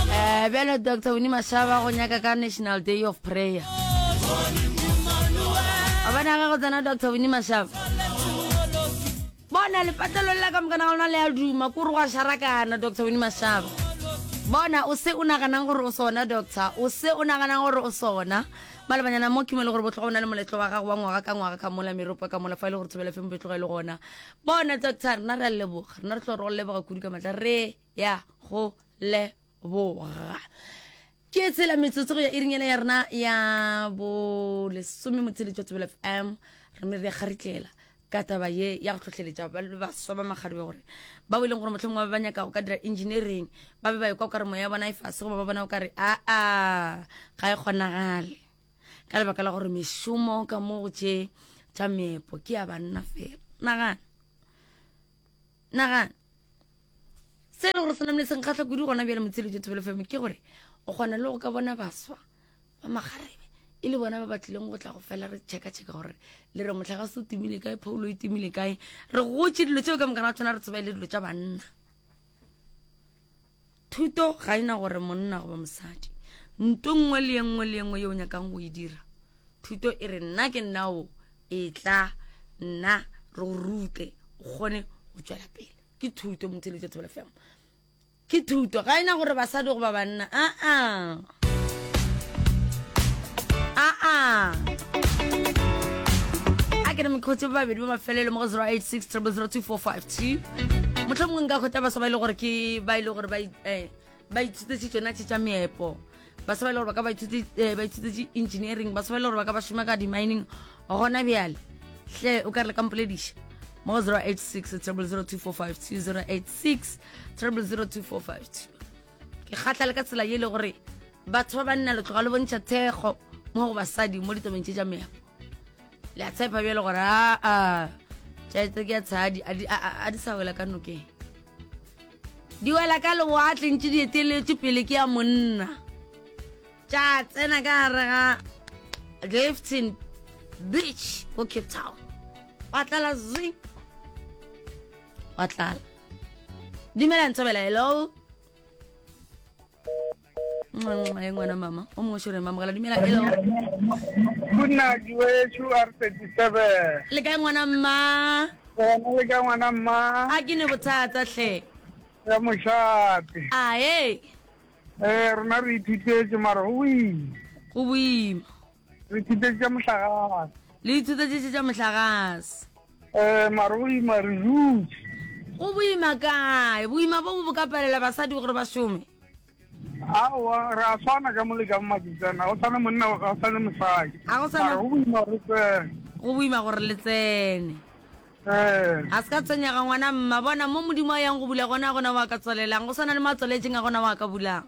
Eh, bjalo dr wini mashaba go nyaka ka national day of prayer a bona ga go tsena dr wini mashaba bona lepatlelong la ka mokana ga lona le a duma kore go a sharakana dr wini mashaba bona o se o naganang gore o sona doctor o se o naganang gore o sona malebanyana mo kimo e le gore botlhogo o na le moletlo wa gago wa ngwaga ka ngwaga ka mola meropa ka mola fa e le gore thobela fe mo betlogo e le gona bona doctor rena re a leboga rena re tlo re go leboga kudu ka matla re ya go leboga ke tshela metsotso go ya irinyana ya rena ya bolesome motsheletšo tsebela fm re me re kgaritlela ka taba ye ya go tlhotlheletša ba le baswa ba makgarebe gore ba e leng gore motlhong ba ba nyaka go ka dira engineering ba be ba ekwa o kare moya ya bona e fase goba ba bona o kare aa ga e kgonagale ka lebaka la gore mešomo ka mo go tše tša meepo ke ya banna fela nagana nagana se e le gore se namile senkgatlha kudu gona bjale motshelo jo thobelo feme ke gore o kgona le go ka bona baswa ba magarebe e le bona ba ba tlileng go tla go fela re checka-checka gore le re motlha ga se o timile kae phoulo e timile kae re gotse dilo tseo ka mokana wa tsona re tseba e le dilo tša banna Thuto ga e na gore monna goba mosadi. Nto nngwe le ye nngwe le ye nngwe yeo o nyakang go e dira, Thuto e re, Nna ke nna o, etla, nna, re go rute, o kgone go tšwela pele. Ke Thuto, Motheeletša Thobela Femo. Ke Thuto. Ga e na gore basadi goba banna, aa. a ke re mekgotse ba babedi ba mafelelo mo go 086 002 motlho mongwe nka kgotsa baswa ba ile e gore ke ba ile e gore ba eh, ithutetse tsona tse tsa meepo ba sa ba ile gore ba ka ba eh, ithutetse engineering ba sa ba ile gore ba ka ba šoma ka di-mining gona bjale hle o ka re le kampolediša mo 086 002 086 002 ke kgatla le ka tsela ye e le gore batho ba banna le tloga le bontšha thekgo mo go basadi mo ditabeng tše tša meago le a tshepa bjale gore aa tšaetse ke ya tshadi a di sa wela ka nokeng di wela ka lewatle ntse di eteletse pele ke ya monna tša tsena ka gare ga gifton beach ko cape town wa tlala zing wa tlala Dumelang Tsobela, hello. Nxenxe ngwana mama, o mongwe shore mama gala dumela hello. Kuna diwe chu R37. Le kae ngwana mma? Bona le kae ngwana mma? A ke ne bothata hle. Ya moshape. A he. Eh rona re ithutetse mara o wi. Go boima. Re ithutetše tša mohlagase. Le ithutetše tša mohlagase. Eh, mare go ima re dutše. Go boima kae? Boima bo bo ka palela basadi gore ba šome? Aowa, re a tshwana ka mole ka bomaketsana. Go tshwane monna, go tshwane mosadi. Ga go tshwana. Go boima re tsene. Go boima gore le tsene. Eh. Ga se ka tshwenyega ngwana mma. Bona mo Modimo a yang go bula gona gona wa ka tswalelang. Go tshwana le mo a tswaletseng a gona wa ka bulang.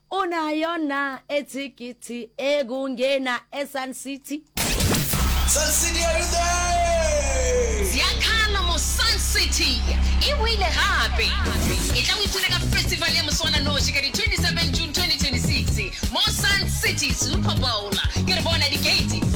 O na yo na e thikiti e ku ngena e Sun City? Sun City are you there? Ziakalo mo Sun City e boile gape. E tla o ipone ka festival ya moswananoši ka di 27 June 2026 mo Sun City Super Bowl. Ke re bona di gate di.